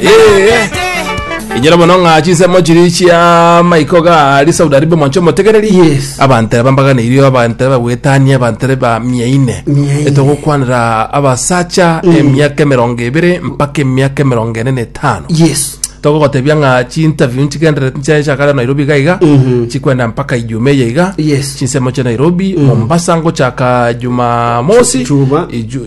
Eh, inyora mono ng'a chinsemo chiri chia maiko ga ari saudi arabia mwanche omotegereri Yes. abantere bambaganeirio abantere bagwetania abantere ba mia ine Mia ine. etogokwanera abasacha emiaka emerongo ebere mpaka emiaka emerongo ene na etano yes togogotebia ng'a chiinterview nchigenderete nchachakare nairobi iga iga Mhm. chikwenda mpaka ijume eye iga Yes. chinsemo chia nairobi mombasa ngochaka jumamosi Juma. Iju-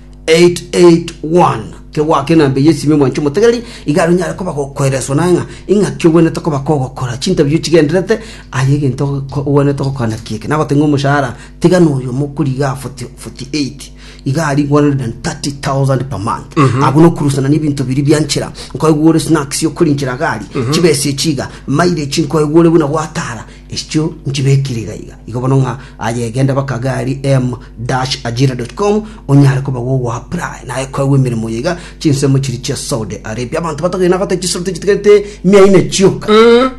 881 Kegwake na mbeya esime mwanche omotegereri, igare onyare koba gokoereswa naye ng'a ing'aki ogwenerete koba kogokora, chintabio chigendererete aye egento ogwenerete gokora naki eke. Nagotebia ng'a omoshahara tiga noyo mokorigia 48 iga aria 130,000 per month. Abwo nokorusanania ebinto biria bia nchera, nkoigwa ore snacks okoriinchera gari, chibesa echi iga, mileage nkoigwa ore buna gwatara, Ichio nchibekire iga iga. Igo bono ng'a aye egenda baka gari m-ajira.com onyare koba gogoapply naye kwegwa emeremo ye iga chinsemo chiri chia Saudi Arabia abanto batogire na gote chisoro tichitigarete mia ine chioka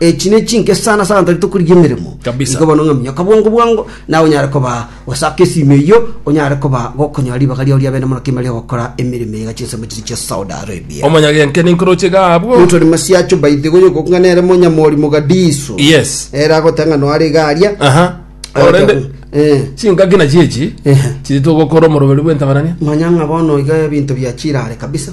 echi ne chinke sana sana tari tokorigia emeremo Kabisa. igo bono ng'a minyokabwango bwango nawe onyare koba Gose ake esimi eyio onyare koba gokonyora ribaga riao riabe na morokimo ria ogokora emeremo eye gachia ensemo chiria chia Saudi Arabia. Omonyagenke ninkoroche iga abwo. Motwe ni masiacho by the way ogoku ng'a nere monyamori Mogadishu. Yes. Ere agoteba ng'a noare iga aria. Aha. Orende Eh. chingaki nachi echi Ehe. chiri togokora omoroberi bw'entabarania. Manya ng'a bono iga ebinto bia chirare kabisa.